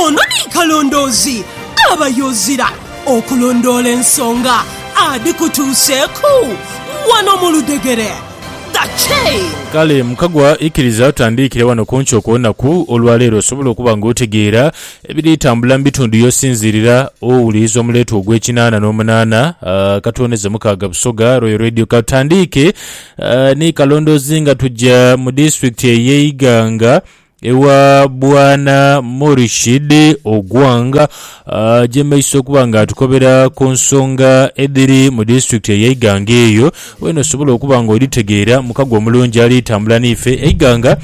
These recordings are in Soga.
Ono ni Kalondoozi abayo ozira okulondoola ensonga adhikutuuseeku wano mu ludhegere. The Chain. Kale mukagwa ikiriza tutandiikire wano ku nkyo kw'onaku olwaleero osobole okuba nga otegeera ebiri tambula mu bitundu y'osinziirira owuliriza omuleetwa ogw'ekinaana n'omunaana Katuwoneze Mukaaga Busoga Royal Radio. Ka tutandiike ni Kalondoozi nga tugya mu disitulikiti ey'e Iganga. Ewa Bwana Murshid Ogwang ajemeisa okuba nga atukobera ku nsonga edhiri mu disitulikiti eye Iganga eyo wena osobola okuba nga odhitegeera mukago omulungi ali tambula niife. Eiganga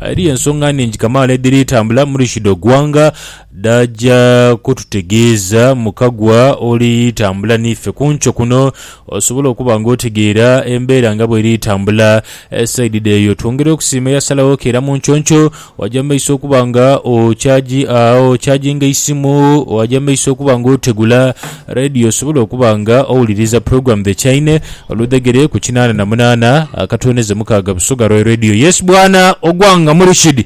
eriyo ensonga nhingi kamaala edhiri tambula Murshid Ogwang dhaja kututegeeza mukagwa oli tambula niife kunkyo kuno Osobola okuba nga otegeera embeera nga bweri etambula saidi dheeyo. Twongera okusiima eyasalagho keera mu nconco. Waja mu maiso okuba nga okyajinga eisimu, waja mu maiso okuba nga otegula Radio osobole okuba nga owuliriza program The Chaine oludhegere ku kinaana na munaana akatwoneze mukaaga Busoga Roy Radio. Yes bwana Ogwanga Murishidi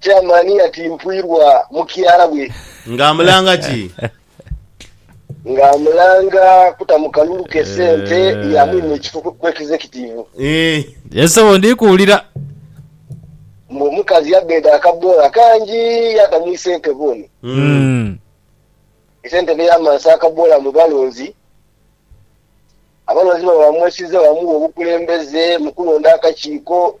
Chairman yatimpwirwa mukyala we. Nga amulanga ki? Nga amulanga kuta mu kalulu ke sente ya mwine ekifo ku Executive. Ii. Yes sebo ndi kuwulira. Mbu omukazi yabbeda akabbola kangi yata mu isentebe ono. Umm. Isentebe yamansa akabbola mu balonzi. Abalonzi baba bamwesize bamuwa obukulembeze mu kulonda akakiiko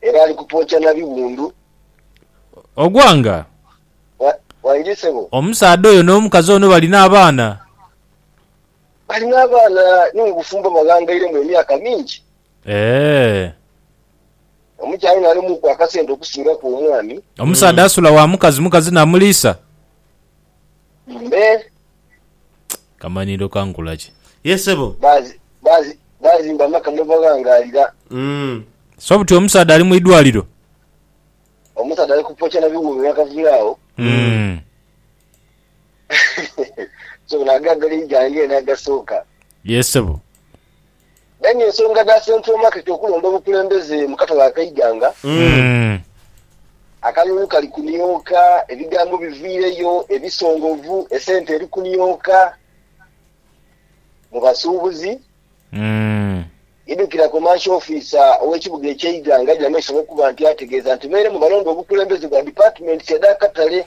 Era ali kutwokya na biwundu. Ogwanga. Wa, waidhi sebo. Omusaadha oyo n'omukazi ono balina abaana? Balina abaana, ni mu bufumbo baghangairemu emyaka mingi. Eeh. Omukyala ono alimuku akasente okusingaku omwami. Omusaadha asula wa mukazi, mukazi n'amuliisa? Eeh. Kamanhiiro ka nkula ki? Ye sebo. Baazimba amaka mwe baghangalira. So buti omusaadha ali mu idwaliro. Omusaadha ali kupokya na biwuubi mwe akaviira agho. So gano ag'agaligya ng'eno agasooka. Ye sebo. Aye nga ensonga dha Central Market okulonda obukulembeze mu katale ak'eighanga, akalulu kali kunioka, ebigambo biviireyo ebisongovu, esente eri kunioka mu basuubuzi. Idhukira Commercial Officer ow'ekibuga eky'eighanga Jane Isolo okuba nti ategeeza nti beere mu balonda obukulembeze bwa Departments edh'akatale.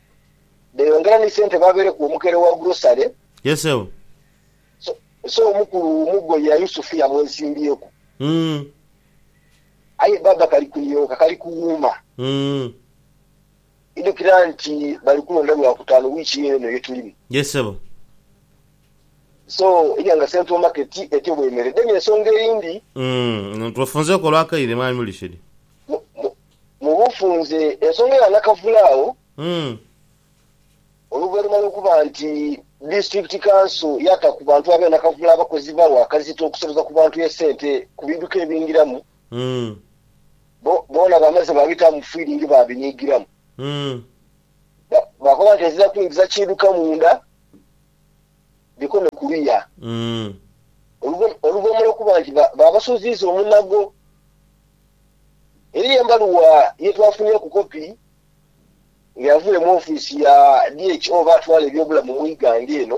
beyongera ni sente babeere ku omukere wa grocery Yeseo. so so omukulu mugo ya Yusufu yamwesimbyeku Mm. aye baba kali kunioka kali kuwuuma Mm. idukira nti bali kulonda lwakutaanu wiiki eno yetulimu Yesebo. so eria nga central market etyo bwemere then ensonga eyindi Mm. Twefunzeeku olwakaire mwami Mulishid. mu mu Mu bufunze, ensonga ya Nakavule agho oluvainhuma lw'okuba nti Disitulikiti Kanso yaata ku bantu ab'e Nakavule abakozi bawe akazito okusabuza ku bantu esente ku biidhuka ebingiramu, bo boona baamaze baabitaamu fiiringi baabiniigiramu. Baakoba nti ezira kwingiza kiidhuka munda, dhikome kuliya. Oluvainhuma lw'okuba nti baabasuuziiza omunago Eriyo embaluwa ye twafunyeeku kopi nga yavule mu ofiisi ya DH oba atwala ebyobulamu mu ighanga eno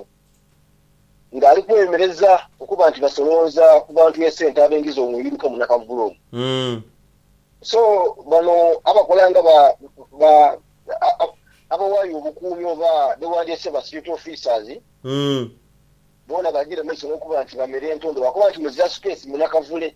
nga ali kweyomereza okuba nti basolonza ku bantu esente abengiza omwiiruka munakavulu ono. So bano abakola nga ba ba abawaayo obukuumi oba bewandyeese ba security officers boona bagira mumaiso nokuba nti bamera entondo lwakuba nti muzira space munakavule.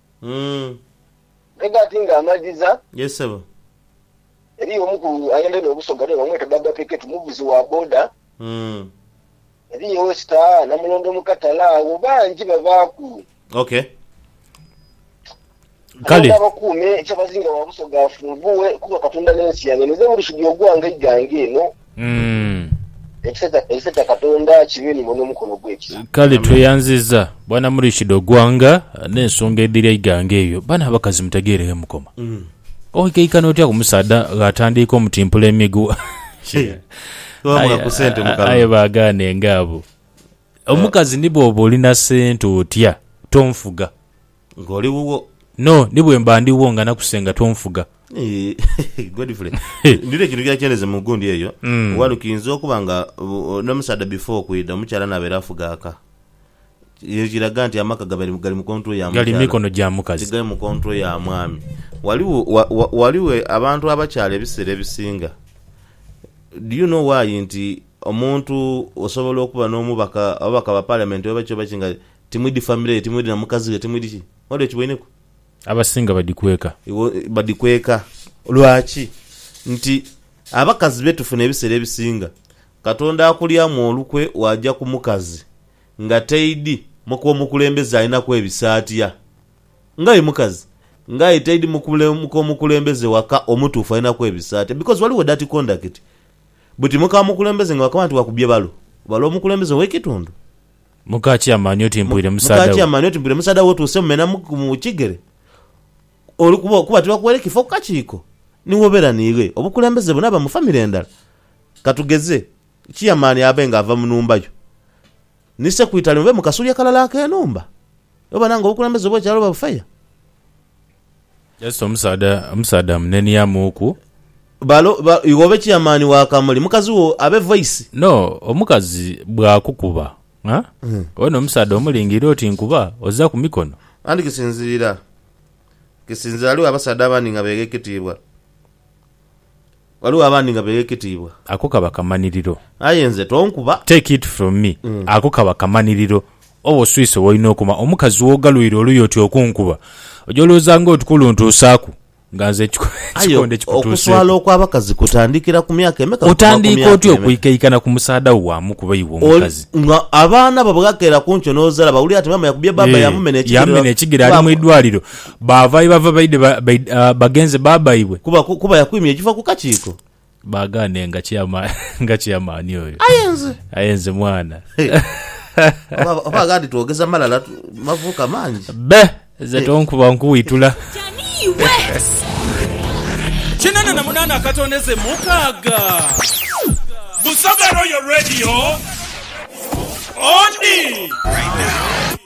Umm. Mpega ati nga amaliza. Yes sebo. Eriyo omu ku ayendha no Busoga naye bamweta Baba Peketu muvuzi wa boda. Umm. Eriyo owe Star, Namulondo mu Katale agho bangi babaaku. Ok. Kale. Katonda abakuume, ekyabazinga wa Busoga afunvughe kuba Katonda ne nsi yange. Ninze Burushidi ogwange eigange eno. Umm. Ekisa kya Katonda kibe ni mwe n'omukono ogw'ekisa. Kale tweyanziza bwana Murichida Ogwanga n'ensonga edhiri eighanga eyo. Bano abakazi mutegeereghe mukoma. Oikaikana otya ku musaadha gh'atandiika omutimpula emigwa? Aye baagaane nga abo. Omukazi ni bw'oba oli na sente otya, tonfuga. Nga oli wuwo. No, ni bwe mba ndi wuwo nga nakusenga t'onfuga. Eeh, Godfrey. Ndidha ekintu kyenakyena mu gundi eyo. Wano kiinza okuba nga n'omusaadha before okwidha, omukyala anaabere afuga aka. Ekyo kiraga nti amaka gabaire gali mu control ya mukyala. Gali mu mikono gya mukazi. Tigali mu control ya mwami. Waliwo, waliwo abantu abakyala ebiseera ebisinga, do you know why nti omuntu osobola okuba n'omubaka, ababaka ba parliament oba ki oba ki nga Timwidi family ye, timwidi na mukazi we, timwidi ki. Wali okiboineku? Abasinga badhikweka. Iwe badhikweka. Lwaki? Nti abakazi be tufuna ebiseera ebisinga, Katonda akulyamu olukwe waaja ku mukazi nga taidi muka omukulembeze alinaku ebisaatya. Ng'aye mukazi, ng'aye taidi mukule muka omukulembeze waka omutuufu alinaku ebisaatya because waliwo dirty conduct. Buti muka mukulembeze nga wakaba nti wakubbye balo, balo omukulembeze ow'ekitundu. Muka Kyamani oti mpwire musaadha we. Muka Kyamani oti mpwire musaadha we otuuse mumena mu kigere oli kubo kuba tibakuweire kifo ku kakiiko ni woberanire obukulembeze buno aba mu famire endala. Katugeze Kyamani abe nga ava mu nhumba yo ni Sekwitale mube mu kasulya kalala ak'enhumba oba nange obukulembeze bw'ekyalo oba bufeya. Just omusaadha omusaadha amuneniamuuku. Balo ba iwe obe chairman wa kamuli mukazi wo abe voice. No omukazi bwakukuba a one omusaadha omulingirire oti nkuba oza kumikono. Anti kisinzirira kisinzira ghaligho abasaadha abandi nga begha ekitiibwa. Ghaligho abandi nga begheketiibwa. Ako kaba kamaniriro. Aye nze tonkuba. Take it from me, ako kaba kamaniriro. Oba oswise w'olina okoma. Omukazi w'ogalwire oluyi oti okunkuba, oja olowooza ng'oti kuluntuusaaku nga nze ekikonde kikutuuseeku. Aye okuswala okw'abakazi kutandikira ku myaka emeka okutuuka ku myaka emeka? Otandiika otya okwikaikana ku musaadha wo bwa mukube iwe omukazi? Nga abaana bo bwebakera ku nkyo n'ozala bawulira nti maama yakubye bbaabba yamumena ekigere ali mu idwaliro. Baava ye bava baidhe bagenze bba baibwe. Kuba, kuba yakwimya ekifa ku kakiiko. Baagaane nga kyama, nga kyamaani oyo. Aye nze. Aye nze mwana. Oba, oba aghaadi twogeza malala mavuuka mangi. Bbe, nze tonkuba nkuwitula. Kinana na munana akatondeze mukaaga. Busoga Royal Radio, odi.